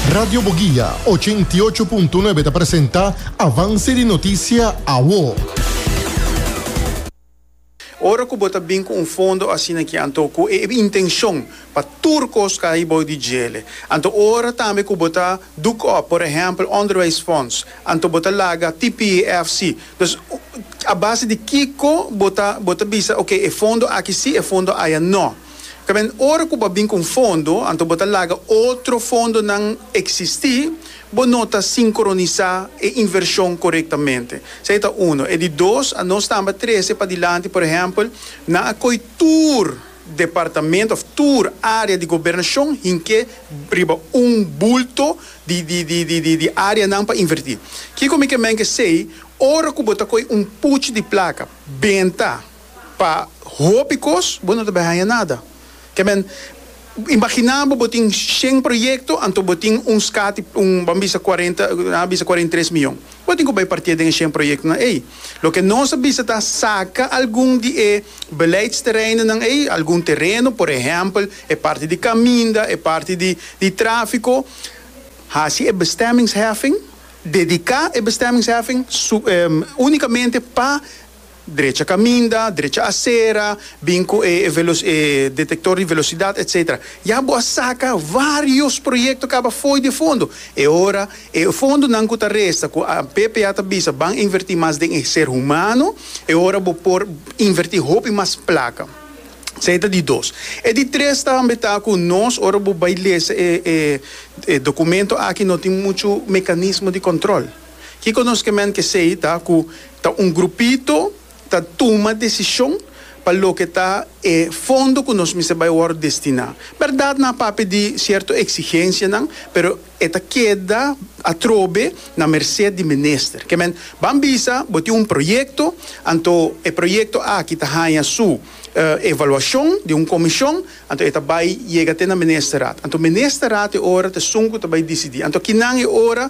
Radio Boguia, ochenta i ocho punto nuebe ta presenta avanse di notisia awo. Ora ku bo ta bin ku un fondo asina ki anto ku e intenshon pa tur kos kai bou di djele, anto ora tambe ku bo ta duk òp, por ehèmpel Onderwijsfonds, anto bo ta laga PPEFC. Dus, a base di kiko bo ta bo ta bisa, oke, e fondo aki sí, e fondo aya no. Tamen ora ku bo a bin ku un fondo, anto bo ta laga otro fondonan eksistí, bo no ta sinkronisá e invershon korektamente. Esei ta uno. E di dos, a nos tambe a trese padilanti, por ehèmpel, nan a koi tur departamento òf tur área di gobernashon hink'é riba un bulto di di áreanan pa invertí. Kiko mi ke menge esei, ora ku bo ta koi un puchi di plaka, benta, Pa hopi kos bo no ta bai haña nada. Ke men, imaginá bo bo tin shen proyekto, anto bo tin un skati, un, bo a bisa kuarenta, nan a bisa kuarenta i tres mion. Bo tin ku bai partié den e shen proyektonan ei. Loke nos a bisa ta saka algun di e beleidstereinennan ei, algun tereno, por ehèmpel, e parti di kaminda, e parti di di tráfiko, hasi e bestemmingsheffing, dediká e bestemmingsheffing su, únikamente pa, drecha kaminda, drecha asera, bin ku e e detektor di velosidat etsetera. Ya bo a saka vários proyekto kaba fo'i di e fondo. E ora e fondonan ku ta resta ku APPA ta bisa ban invertí mas den e ser humano, e ora bo por invertí hopi mas plaka. Esei ta di dos. E di tres tambe ta ku nos ora bo bai lesa e e dokumento aki no tin muchu mekanismo di kòntròl. Kiko nos ke men kesei ta ku ta un grupito ta tuma desishon pa loke ta e fondo ku nos mester bai wòrdu destiná. Bèrdat nan a papia di sierto eksigensianan, pero e ta keda atrobe na mersé di minister. Ke men ban bisa bo tin un proyekto, anto e proyekto aki ta haña su evaluashon di un komishon, anto e ta bai yega te na ministerat. Anto ministerat e ora t'esun ku ta bai disidí. Anto kinan e ora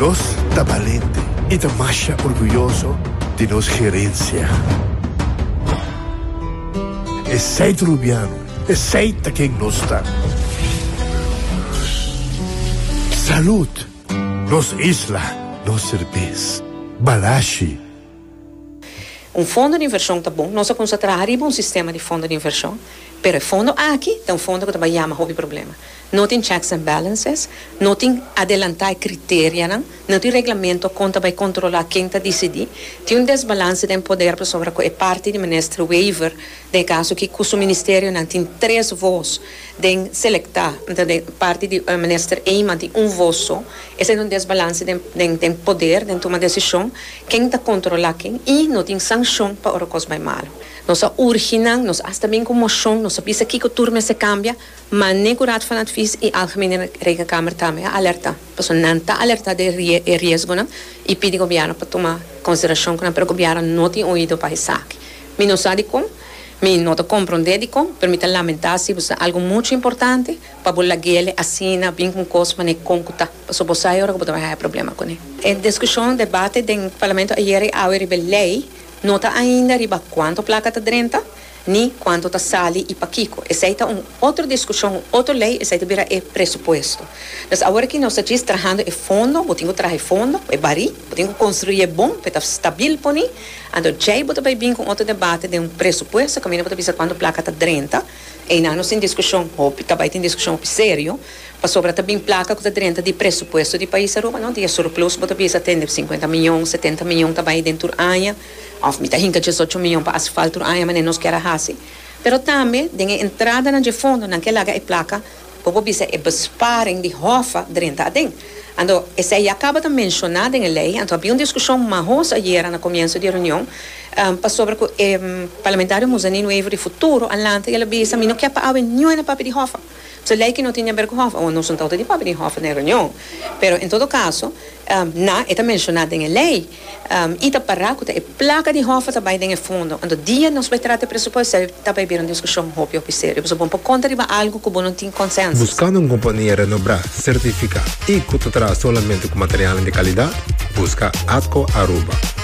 Nos ta balente i ta masha orguyoso di nos herensia. Esei Trubiano, esei ta ken nos ta. Salud! Nos isla, nos serbes. Balashi! Un fondo di invershon ta bon. Nos a kumsa traha riba un sistema di fondo di invershon, pero e fondo aki ta un fondo ku ta bai yama hopi problema. No tin checks and balances, no tin adelantá e kriterianan, no tin reglamento kon ta bai kontrolá ken ta disidí. Tin un desbalanse den poder pasobra ku e parti di Minister Wever, den e kaso aki ku su ministerionan tin tres vos den selektá, nta den parti di Minister Eman tin un vos so. Esei ta un desbalanse den den den poder, den tuma desishon, ken ta kontrolá ken i no tin sanshon pa ora kos bai malu. Nos a urgi nan, nos asta bin ku moshon, nos a bisa kiko tur mester kambia. Manne ku Raad van Advies i Algemene Rekenkamer tambe a alerta, pasobra nan ta alerta di e riesgonan i pidi gobièrnu pa tuma konsiderashon ku nan, pero gobièrnu no tin oido pa esaki. Mi no sa dikon, mi no ta komprondé dikon, pero mi ta lamentá si bo sa algu muchu importante pa bo laguele asina bin ku un kos manera kon ku ta, pasobra bo sa e ora ku bo ta bai haña problema kuné. E diskushon, debate, den Parlamento ayere i awe riba e lei no ta ainda riba kuantu plaka ta drenta, ni cuanto ta sali y pakico. Esey ta un otro discusion, un otro ley, esey ta bira e presupuesto. Pues awor aki nos ta djis trahando e fondo, bo tin cu traha e fondo, e bari, bo tin cu construi'e bon p'e ta stabil poni, anto djey bo ta bay bin cu un otro debate den un presupuesto caminda bo ta bisa cuanto placa ta drenta, eynan nos tin discusion hopi, ta bay tin discusion hopi serio, pasobra ta bin placa cu ta drenta di presupuesto di pais Aruba, no di e surplus bo ta bisa tende cincuenta miyon, setenta miyon ta bay den tur aña. Òf mi ta hinka diesocho mion pa hasi falt tur aña manera nos kier a hasi. Pero tambe den e entradanan dje fondo nan ke laga e plaka ku por bisa e besparing di hòfa drenta aden. Anto esei ya kaba ta menshoná den e lei, anto a bin un diskushon mahoso ayera na komienso di e reunion pasobra ku e parlamentario Muzanin Wever di futuro a lanta i el a bisa, Mi no kier pa awe niun e papia di hòfa. So lei ki no tin den Berko Hof awo nos un autoridad pa bini hof den reunion. Pero en todo caso na e ta menciona den e lei y ta para cu ta e placa di hof a ta bay den e fondo. Anto dia nos bay trata e presupuesto esei ta bay bira un discusion hopi hopi serio. Pasobra bo no por conta riba algo cu bo no tin consensus. Buscando un compania renobrá, certificá y cu ta traha solamente cu materialnan di calidad? Busca Atco Aruba.